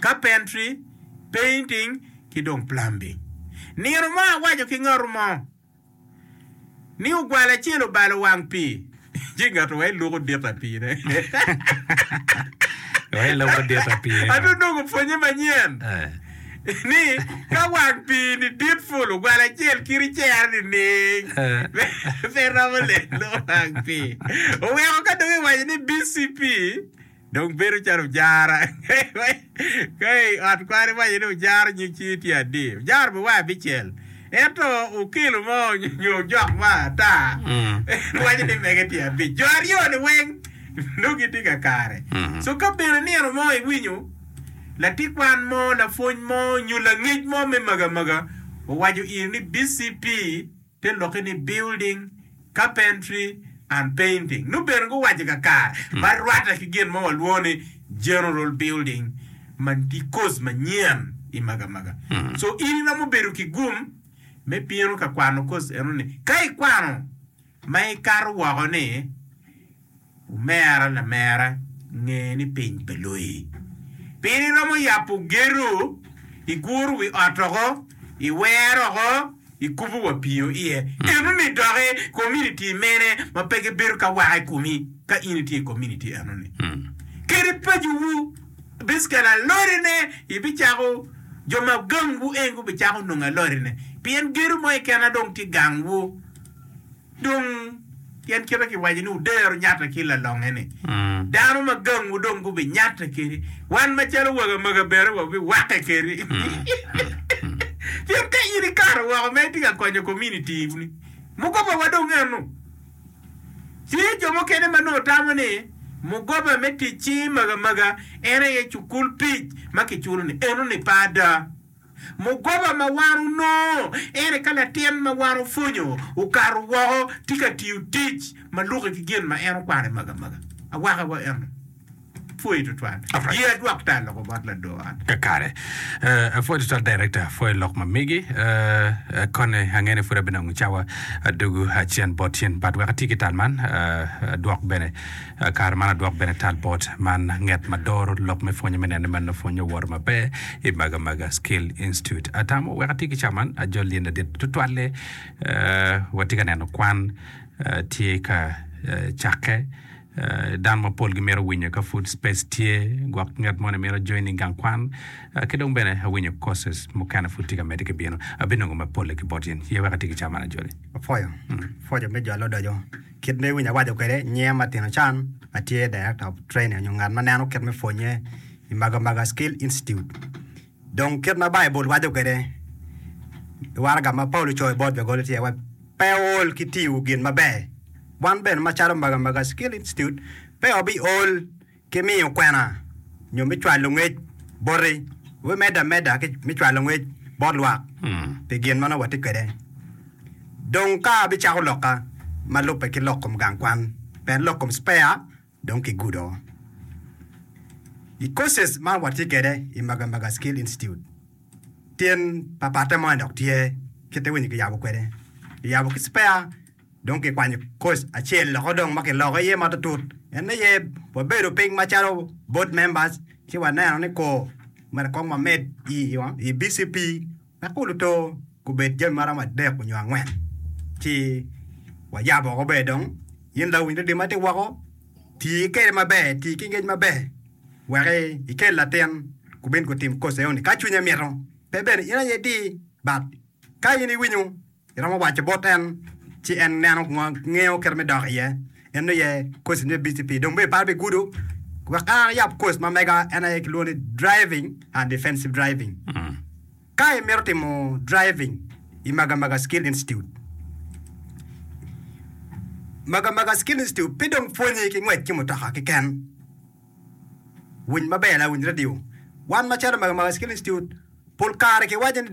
carpentry, painting, ki dong plumbing. Nino mo awaco ki ngat mo ni ogwal acel obalo wang pii, ci ngat owaco ni luko dit aye piine. Owaco luko dit aye piine. Ati onongo pwonye manyen ni ka wang pii ni dit ful ogwal acel kiri cero nining? Pe iromo lelo wang pii. Oweko ka dong iwaco ni BCP. Dong bedo calo ojara ka i ot kwan iwaco ni ojaro nyig cing tye adi? Ojaro me wai abicel. Ento okelo mo nyo ojok mo ata en waco ni mege tye abic. Jo aryo ni weng nongo gitye ka kare. So ka bene nino mo iwinyo latit kwan mo, lapwony mo nyo langec mo me magamaga owaco in ni BCP, pe lokke ni building, carpentry and painting, nongo bene guwaco kakare ma rwatte ki gin ma walwongo ni general building ma tye course manyen i magamaga. So in iromo bedo ki gum me bino ka kwano course eno ni. Ka ikwano ma ikato woko ni. Omera lamera, nge ni piny pe loyi. Pien iromo yabo gedo, iguro wi ot oko, iwero oko, ikubo wa piyo iye. Enoni doki kominiti mene ma pe gibedo ka waka i komi ka in itye i kominiti enoni? Kadi pacowu bicekelo alorine, ibicako jo ma gangwu en gubicako nongo alorine, pien gedo mo keken dong tye gangwu. Dong, pien kite kiwaco ni wudero nyatte ki lalonge-ni, dano ma gangwu dong gubinyatte kedi, wan macalo wagamaga bene wabiwakke kedi. Pien ka in ikato woko ma itye ka konyo kominitiwu-ni, mugobawa dong eno. Tye jo mukene ma nongo tamo ni mugoba me tic-ci magamaga en aye cukul pic ma kiculo-ni, eno-ni pe ada. Mugoba ma wan onongo en aye ka latin ma wan opwonyo okato woko tye ka tiyo tic ma lukke ki gin ma en okwano i magamaga. Awaka wa eno pwoyi tutwal. Ye adwok tal loko bot lador ot. Kare. Apwoyi tutwal Director, apwoyi lok ma migi. Kone ange ni pud abinongo cawa adugu acen bot cen but wek ati ki tal man adwok bene. Kare man adwok bene tal bot man nget ma doro lok me pwonye me nene man nongo pwonye owoto maber i Maga Maga Skill Institute. Atamo wek atye ki ca man ajol lyen ladit tutwalle watye ka neno kwan tye ka cakke dano mapol gimito winyo ka pud space tye gwok nget moni mito join i gang kwan ki dong bene awinyo courses mukene pud tye ka mede ki bino abinongo mapolle ki bot in ye wek atye ki ca man ajoli. Apwoyo. Pwoco me jo alodoco. Kit ma iwinyo awaco kwede, nyiya ma tino can ma tye Director of Training nyo ngat ma neno kit me pwonye i Magamaga Skill Institute. Dong kit ma Baibul waco kwede i waraga ma Paulo ocoyo bot Lugoli tye wai, Pe wuol ki tiyo gin maber. Wan bene macalo Magamaga Skill Institute, pe wabiol ki miyo kwena nyo me cwalo ngec boti, we medde ameda ki me cwalo ngec bot lwak pi gin ma nongo watye kwede. Dong ka abicako lokka ma lubbe ki lok kom gang kwan, pien lok kom spare dong kigudo. I courses ma watye kwede i Magamaga Skill Institute, tyen papatte mo en dok tye kite winyo kiyabo kwede, kiyabo ki spare, Dong kikwanyo koc acel loko dong ma kiloko iye matutut, en aye wabedo piny macalo board members ci waneno ni kor mere kong wamed i BCP wek kulu to gubed jami maromo adek onyo angwen ci wayabo woko ber dong in lawiny ludi matye woko ti kede maber ti ki ngec maber wek ikel latin gubin gutim koc enoni ka cwinye mito pe bene in aye di but ka in iwinyo Iromo waco bot en ci en neno kun ngeyo kite me dok iye. En nongo iye kosin me BCP. Dong bene iparo pi gudo wek ka iyab kos ma mega en aye kilwongo ni Driving and Defensive Driving. Ka imito timo driving i Magamaga Skill Institute, Magamaga Skill Institute pe dong pwonyi ki ngwec ki mutoka keken. Winy maber lawiny radio. Wan macalo Magamaga Skill Institute pol kare kiwaco ni